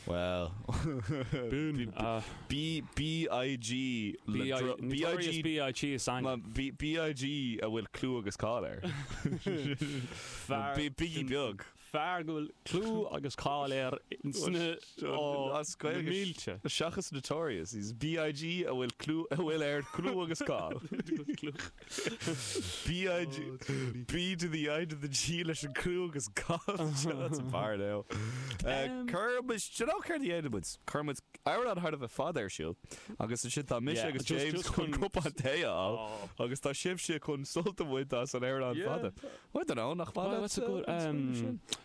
Bhuel. Bun a. Bí BIG le BIG dro- Notorious BIG is ainm. Ma- B- BIG a bhfuil clú agus cáil air. Fear- Bí Biggie Beag. Fear go bhfuil clú agus cáil air sna Ó, as na Gaeilge. mílte. Seachas Notorious, BIG a bhfuil clú a bhfuil air clú agus cáil. B to the I to the G leis an clú agus cáil seo as an bhfear inniu. Cuirfidh muid, do you know céard a dhéanfaidh muid? Cuirfidh muid amhrán thar a bheith fada ar siúl agus ansin tá mise agus James chun cupán tae a fháil agus tá sibhse chun sult a bhaint as an amhrán fada. I don't know, nach fada?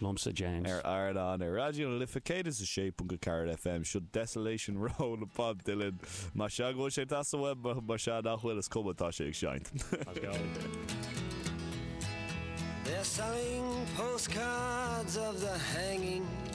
Liomsa, James. Ar Raidió, ar Raidió na Life 106.4 FM, seo Desolation Row le Bob Dylan. Más ea go bhfuil sé deas daoibh, más ea nach bhfuil, is cuma, tá sé ag seinnt. Let's go. They're selling postcards of the hanging.